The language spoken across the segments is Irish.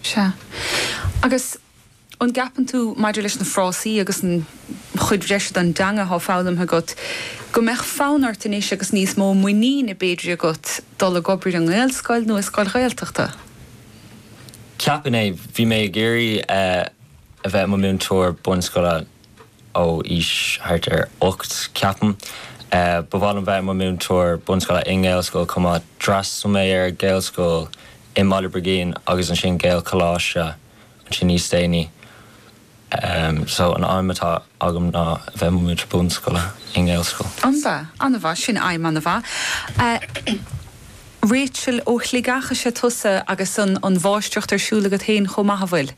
Sea. Agus an gceapann tú, maidir leis na frásaí agus an chuid bhreise den dteanga atá foghlamtha agat, go mbeadh fonn ort anois agus níos mó muiníne, b'fhéidir, agat dul ag obair i nGaelscoil nó i scoil Ghaeltachta? Ceapaim é. Bhí mé ag iarraidh a bheith i mo mhúinteoir bunscoile. ó aois thart ar ocht, ceapaim. Ba mhaith liom bheith i mo mhúinteoir bunscoile i nGaelscoil chomh maith. D'fhreastal mé ar Ghaelscoil i mBaile Brigín agus ansin Gaelcholáiste ansin níos déanaí. So an aidhm atá agam ná bheith i mo mhúinteoir bunscoile i nGaelscoil. Ana-mhaith, ana-mhaith. Sin aidhm ana-mhaith. Rachel, ó Shligeach is ea tusa agus an mháistreacht ar siúl agat féin chomh maith, an bhfuil?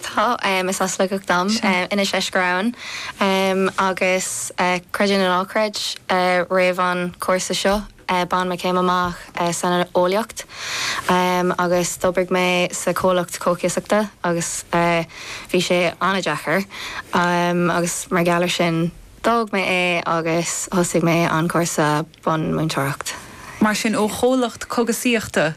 Tá, is as Sligeach dom. Inis Crabhann. Agus creid é nó ná creid, roimh an chúrsa seo, bhain mé céim amach san eolaíocht agus d'oibrigh mé sa chomhlacht cógaíosachta agus bhí sé an-deacair agus mar gheall ar sin, d'fhág mé é agus thosaigh mé an cúrsa. bun múinteoireacht. Mar sin, ó chomhlacht cógaisíochta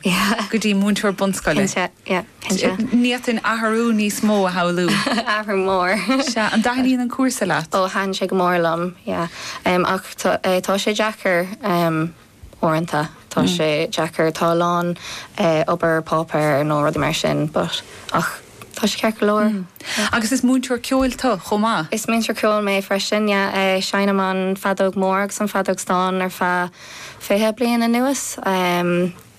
go dtí múinteoir bunscoile. Ní fhéadfainn athrú, níos mó a shamhlú. Athrú mór. Sea, an dtaitníonn an cúrsa leat? Ó, taitníonn sé go mór liom, yeah. Ach tá sé deacair uaireanta, tá sé deacair, tá a lán obair páipéar nó rudaí mar sin but, ach Tá sé ceart go leor. Agus is múinteoir ceoil tú chomh maith? Is múinteoir ceoil mé freisin, yeah. Seinnim an feadóg mór agus an feadóg stáin ar feadh fiche bliain anuas.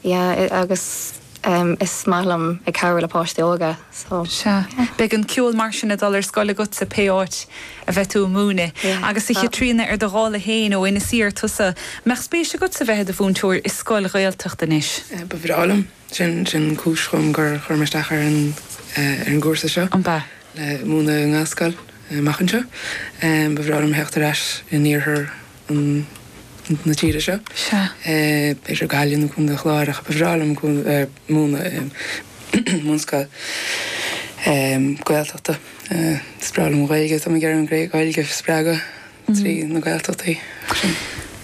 Yeah, agus is maith liom ag cabhrú le páistí óga, so. Sea. Beidh an ceol mar sin ag dul ar scoil agatsa pé áit a bheidh tú ag múineadh. Yeah. Agus a Chaitríona, ar do dhála féin, ó Inis Oírr tusa, mbeadh spéis agatsa bheith i do mhúinteoir i scoil Ghaeltachta anois? Ba bhreá liom. Sin an chúis dhom gur chuir mé isteach ar an gcúrsa seo, le múineadh i nGaelscoil amach anseo. Ba bhreá liom theacht ar ais in iarthar na tíre seo, b'fhéidir Gaillimh nó Contae an Chláir, ach ba bhreá liom múineadh i mbunscoil Gaeltachta. Is breá liom an Ghaeilge, tá mé ag iarraidh an Ghaeilge a spreagadh trí na Gaeltachtaí.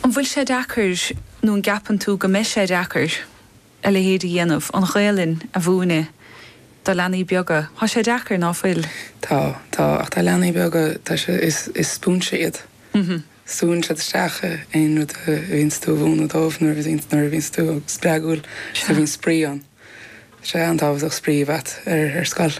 An bhfuil sé deacair nó an gceapann tú go mbeidh sé deacair? a leithéid a dhéanamh, an Ghaelainn a mhúineadh do leanaí beaga. Tá sé deacair, ná fuil? Tá, tá. Ach tá leanaí beaga, tá sé, is, is spúinse iad. Súann siad isteach aon rud a bhíonns tú a mhúnadh dóibh nuair a bhíonns, nuair a bhíonns tú spreagúil, nuair a bhíonns spraoi ann. Tá sé an-tábhachtach spraoi a bheith a't ar, ar scoil.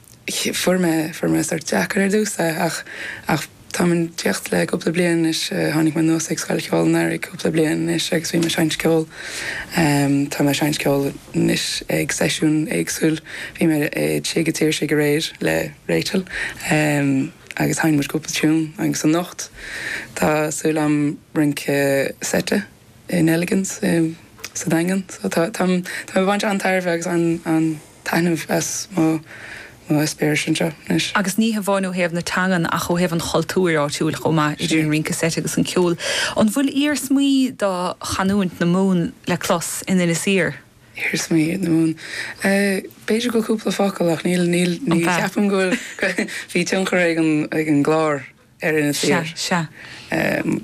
Fuair mé, fuair mé sórt deacair ar dtús é ach, ach táim ag tíocht le cúpla bliain anois, tháinig mé anuas ag Scoil Cheoil an Earraigh cúpla bliain anois agus bhí mé ag seinnt ceol, tá mé ag seinnt ceol anois ag seisiún éagsúil, bhí mé i Tigh a' tSaorsaigh aréir le Rachel agus sheinn muid cúpla tiún agus anocht tá súil agam rince seite. i Neligan's sa Daingean so tá tá tá mé baint an-tairbhe agus an an-taitneamh as mo mo eispéiris anseo anois. Agus ní hamháin ó thaobh na teangan ach ó thaobh an chultúir áitiúil chomh maith, idir an rince seit agus an ceol. An bhfuil iarsmaí do chanúint na Mumhan le clos in Inis Oírr? Iarsmaí na Mumhan? B'fhéidir go cúpla focal ach níl níl ní cheapaim go bhfuil bhí tionchar ag an ag an gClár. ar Inis Oírr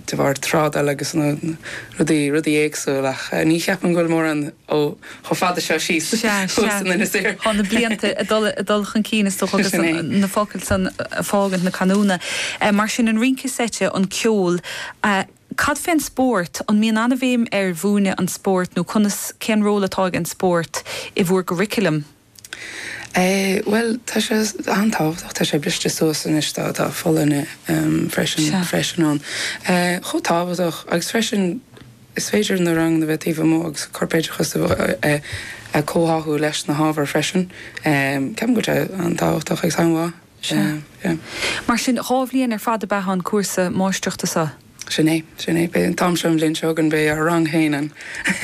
de bharr trádáil agus rudaí éagsúil ach ní cheapaim go bhfuil mórán chomh fada seo síos thuas in Inis Oírr. Tá na blianta ag dul chun cinn is dócha agus na focail san ag fágaint na canúna. Mar sin, an rince seite, an ceol, cad fé an spórt? An mbíonn an-bhéim ar mhúineadh an spóirt nó conas, cén ról atá ag an spórt i bhúr gcurriculum? Bhuel, tá sé an-tábhachtach, tá sé briste suas anois, tá folláine freisin freisin ann. Chomh tábhachtach agus freisin, is féidir na ranganna a bheith taobh amuigh agus corpoideachas a chomhtháthú leis na hábhair freisin. Ceapaim go raibh sé an-tábhachtach agus an-mhaith. Mar sin, dhá bhliain ar fad ab ea an cúrsa máistreachta seo? Sin é, sin é. Beidh an t-am seo an bhliain seo chugainn, beidh ár rang féin againn.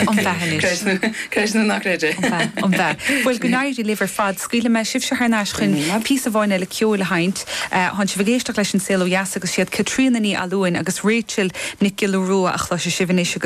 An-mhaith anois. Creid é nó ná creid é. An-mhaith, an-mhaith. Bhuel, go n-éirí libh ar fad. Scaoilfidh mé sibhse thar n-ais chun píosa amháin eile ceoil a sheinnt. Tánn sibh ag éisteacht leis An Saol Ó Dheas agus is iad Caitríona Ní Fhallúin agus Rachel Nic Giolla Rua a chloisfidh sibh anois agus.